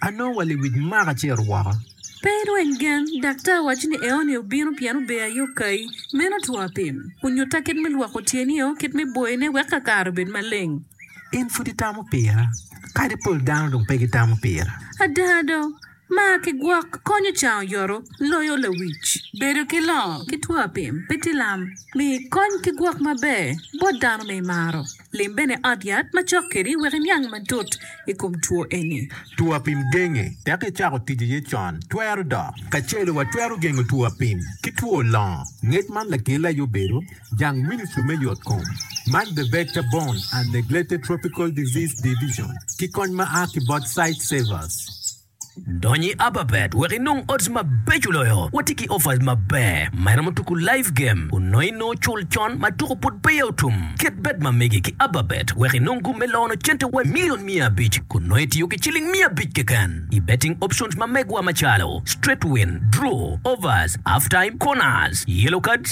Anongo wa lewic mwaka acel woko. Pe ilweny gen. Daktar waco ni eoni obino pien ober aye okayi. Meno two apim. Onyutta kit me lwoko tyenio, kit me boyone wek kakare obed maleng. In pud itamo pira, kadi pol dano dong pe gitamo pira. Ada do, mar ki gwok konyo cango yoto loyo lawic. Bedo ki longo ki two apim pe tye lam. Miyo ikony ki gwok maber bot dano ma imaro. Lim bene ot yat ma cok kedi wek iniang matut i kom two eni. Two apim genge tek icako tic aye con twero dok. Kacelo watwero gengo two apim ki two longo ngec man lakele aye obedo jang Ministry me yot kom man The Vector Borne and Neglected Tropical Disease Division ki kony ma a ki bot Sightsavers. Dony i Ababet wek inong odds mabeco loyo. Watye ki offers maber ma iromo tuku live game onongo i nongo cul con ma tuku pud peya otum. Ket bet ma megi ki Ababet wek inong gum me lono cente wa milion miya abic kun nongo itiyo ki ciling miya abic keken i betting options ma megwa macalo, straight win, draw, overs, half time, corners, yellow cards,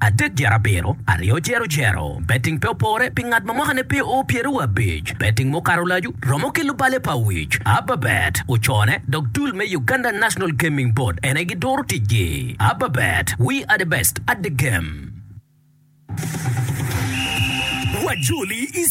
adek dyerabiro, aryo dyerojero. Betting pe opore pi ngat ma mwakane pe oo pyeraryo wa abic. Betting mukato lacu romo ki lubale pa wic. Ababet ocone dok dul me Uganda National Gaming Board en aye giduro ticgi. Ababet, we are the best at the game. Wajoli i.